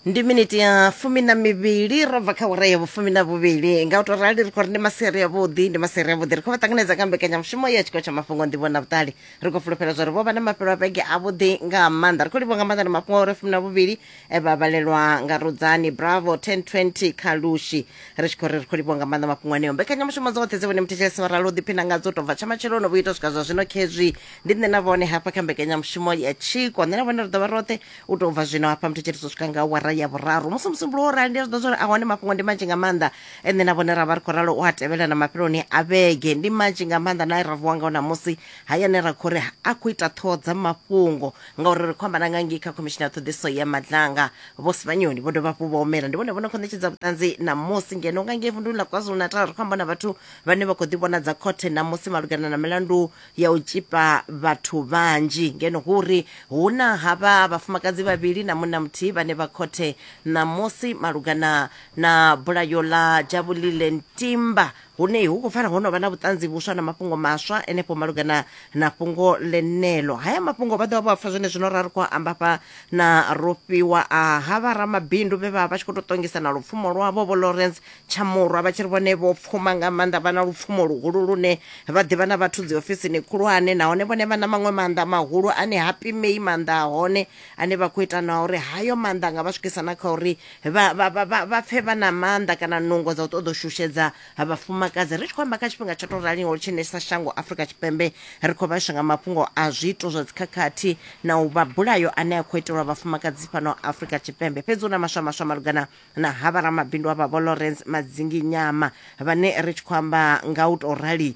ndi miniti ya fumi na mivhili ro bva kha awara ya vhufumi na vhuvhili nga u to rali ri khou ri ndi maseri avhuḓi ndi maseri avhuḓi ri khou vha ṱanganedza nga mbekanyamushumo ya tshikolo tsha mafhungo ndivho na vhuṱali ri khou fulufhela zwa ri vho vha na mafhelo a vhege avhuḓi nga maanḓa ri khou livhuwa nga maanḓa na mafhungo a uri fumi na vhuvhili eh, vha vhalelwa nga rudzani bravo 1020 kha lushi ri tshi khou ri ri khou livhuwa nga maanḓa mafhungo aneo mbekanyamushumo dzoṱhe dze vhone muthetshelesi vha ralo ḓiphina ngadzo u tou bva tsha matsheloni vhu ita swika zwa zwino khezwi ndi nṋe na vhone hafha kha mbekanyamushumo ya tshiko nṋe na vhone ri ḓovha roṱhe u tou bva zwino hafha muthetshelesi u swika nga wara ya vhuraru musi musumbulo wo rali ndi a zwi ḓo zwori a hone mafhungo ndi manzhi nga maanḓa ene na vhone ra vha ri khou ralo u a tevhela na mafheloni a vhege ndi manzhi nga maanḓa na ra vuwa ngao namusi hayani ra khou ri a khou ita ṱhoho dza mafhungo ngauri ri khou amba na nga ngei kha khomishini ya ṱhoḓiso ya madlanga vho sivhanyoni vho dovha hafhu vha humela ndi vhone vho no khou ṋetshedza vhuṱanzi ṋamusi ngeno nga ngei vunduni ḽa kwazulu-natal ri khou amba na vhathu vhane vha khou ḓivhonadza khothe ṋamusi malugana na milandu ya u tshipa vhathu vhanzhi ngeno hu uri hu na havha vhafumakadzi vhavhili na munna muthihi vhane vha khothe ṋamusi malugana na bulayo ḽa dzhavhulile ntimba hune hu khou pfala ho no vha na vhuṱanzi vhuswa na mafhungo maswa enefho malugana na fhungo ḽenelo haya mafhungo vha ḓovha vho apfa zwone zwino ra ri khou amba fha na rofhiwa a ha vha ramabindu vhe vha vha tshi khou tou ṱongisa na lupfumo lwavho vho lawrence tshamurwa vha tshi ri vhone vho pfuma nga maanḓa vha na lupfumo luhulu lune vha ḓivha na vhathu dzi ofisini khulwane nahone vhone vha na maṅwe maanḓa mahulu ane ha pimei maanḓa a hone ane vha khou ita na uri hayo maanḓa nga vha swikisa na kha uri vha pfe vha na maanḓa kana nungo dza u ṱoḓa u shushedza vhafumakadzi ri tshi khou amba kha tshifhinga tsho to raliho tshine sa shango afrika tshipembe ri khou vhaiswa nga mafhungo a zwiito zwa dzikhakhathi na u vha bulayo ane a khou itelwa vhafumakadzi fhano afrika tshipembe fhedzi hu na maswa maswa malugana na ha vharamabindu avha vho lawrence madzingi nyama vhane ri tshi khou amba nga u to rali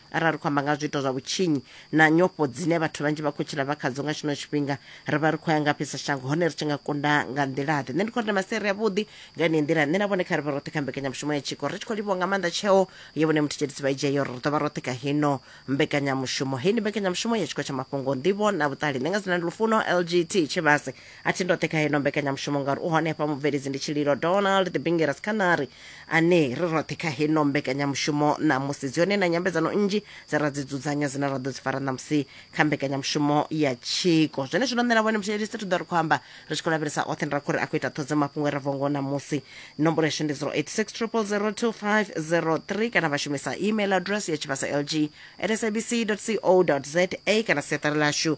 Arali ri khou amba nga zwiito zwa vhutshinyi na nyofho dzine vhathu vhanzhi vha khou tshila vha khadzo nga tshino tshifhinga, ri vha ri khou ya ngafhi sa shango hone ri tshi nga kunda nga nḓila-ḓe? Nṋe ndi khou ri ndi masiari avhuḓi nga yeneyi nḓila. Nṋe na vhone kha ri vhe roṱhe kha mbekanyamushumo ya tshiko. Ri tshi khou livhuwa nga maanḓa tsheo ye Vho Nemuthetshelisi vha i dzhia ya uri ri ḓo vha roṱhe kha heino mbekanyamushumo. Heyi ndi mbekanyamushumo ya Tshiko tsha Mafhungo, Nḓivho na Vhuṱali. Nṋe nga dzina ndi Lufuno LGT Tshivhase. a thi ndoṱhe kha heno mbekanyamushumo ngauri u hone hafha mubveledzi ndi tshililo donald the bingeras canary ane ri roṱhe kha heno mbekanyamushumo ṋamusi dzi hone na nyambedzano nnzhi dze ra dzi dzudzanya dzine ra ḓo dzi fara ṋamusi kha mbekanyamushumo ya tshiko zwene zwino nṋe na vhone mutshielisi ri ḓo ri khou amba ri tshi khou lavhelesa oṱhe ra khou ri a khou ita ṱhodzo mafhungo e ra vongo ṋamusi nomboro yashu ndi 086 0002503 kana vha shumisa email address ya tshivhasa lg at sabc co za kana siaṱari lashu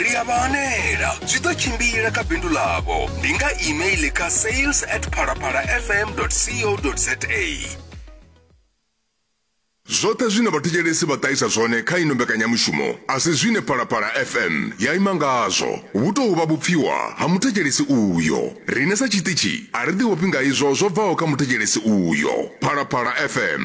ri a vha hanela zwi ḓo tshimbila kha bindu ḽavho ndi nga email kha sales at phalaphalafm co za zwoṱhe zwine vhathetshelesi vha ṱahisa zwone kha ino mbekanyamushumo a si zwine phalaphala fm ya ima ngazwo vhu tou vha vhupfiwa ha muthetshelesi uyo rine sa tshiṱitshi a ri ḓivhofhi nga izwo zwo bvaho kha muthetshelesi uyo phalaphala fm